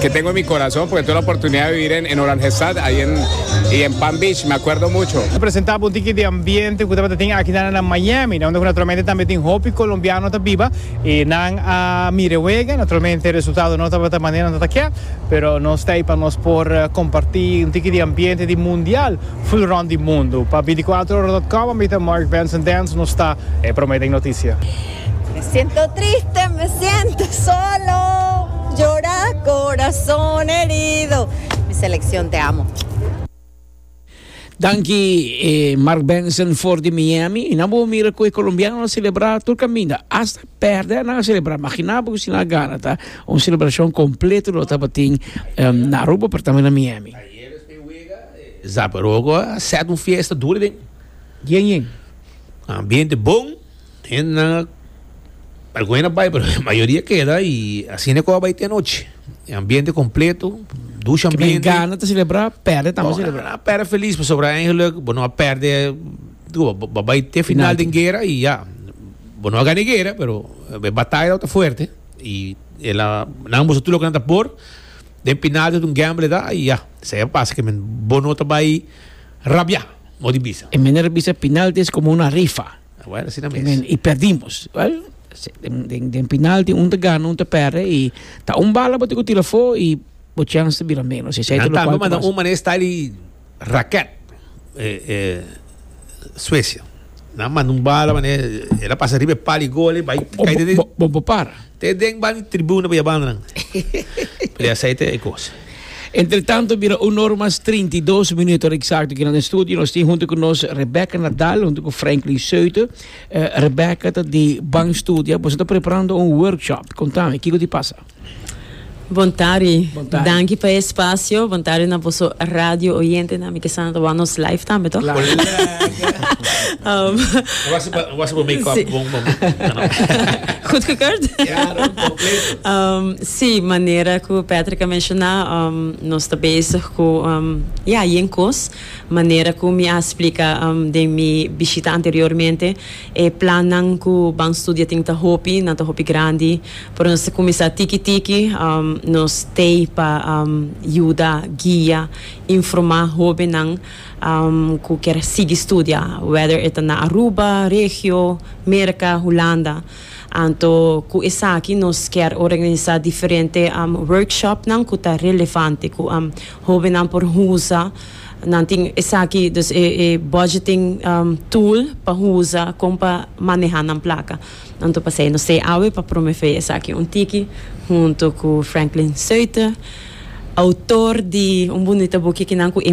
Ke tengo en mi corazon porque tuve la oportunidad di vivir en Oranjestad y en Palm Beach, me acuerdo mucho. Presenta bo un tiki di ambiente cu tabata tin akina na Miami, unda cu naturalmente tambe tin hopi colombiano ta biba y nan a mira e wega, naturalmente resultado no tabata manera nan ta kia, pero nos ta ey pa nos por comparti un tiki di ambiente di mundial ful rond di mundo. Pa veinticuatrohora dot com a mi ta Mark Benson Dance nos ta prome den noticia. Me siento triste, me siento solo, llora corazón herido, mi seleccion te amo. Danki Mark Benson for di Miami. Na bo mira ku e kolombiano a selebrá tur kaminda. Hasta pèrdè nan a selebrá. Imaginá bo si nan a gana ta un selebrashon kompleto lo tabatin um, na Aruba pero tambe na Miami. Sa pero oko a sèt un fiesta duri den. Yen yen. Ambiente bon. Hendenan a algun a bai pero la mayoria keda y asina e cosa bai te anochi. E ambiente completo, ducha Ke ambiente. gana te celebra, perde tambe Bueno, celebra. a perde feliz, pasobra eigenlijk, bo no a perde, digo, bo- bo bai te final den guerra y ya. Bo no a gana e guerra, pero e batalla ta fuerte y e la, nan a bisa tur loke nan ta por, den final ta un gamble ta y ya. Esei a pasa, ke men, bo no ta bai rabia, mos di bisa. E manera bisa final ta es como una rifa. Awel, asina mes. Amen. I perdimos. Well, den, den, den penalti un ta gana, un ta perde i ta un bala bo te ku tira fo i bo chance ta bira menos. Esei ta Nan lo tambe kual ta manda pasa. un mané style di raket eh, eh, Suecia. Nan manda un bala mané, el a pasa riba e pal i gole, bai O kai bo, den, bo, bo, bo para. te den ban tribuna pa ya banda nan. Pero ya esei ta e kos. Entretanto bira un ora mas trinta i dos minuto ora eksakto aki na nos studio nos tin huntu ku nos Rebecca Nadal huntu ku Franklin Seute. Rebecca ta di Ban Studia, boso ta preparando un workshop, kontami kiko di pasa? Bon tardi, danki pa e spasio, bon tardi na boso radio oyentenan, mi kesa nan ta wak nos live tambe tò? Wak su bo make up bon momentnan. Goedgekeurd? Sí, manera ku Patrick a menshoná, nos ta bezig ku ya yen kos. Manera ku mi a splika den mi bishita anteriormente, e plannan ku ban studia tin ta hopi, nan ta hopi grandi, pero nos ta kuminsá tiki tiki. Nos t'ei pa yuda, guia, informá hóbennan ku ker sigui studia, wèder e ta na Aruba, Regio, Merka, Hulanda. Anto ku esaki nos kier organisa diferente workshopnan ku ta relevante ku hobennan por usa. Nan tin esaki dus e e budgeting tool pa usa kon pa maneha nan plaka. Anto pasei nos ta e awe pa promove esaki un tiki hunto ku Franklin Suiter, outor di un bunita buki kinan ku e.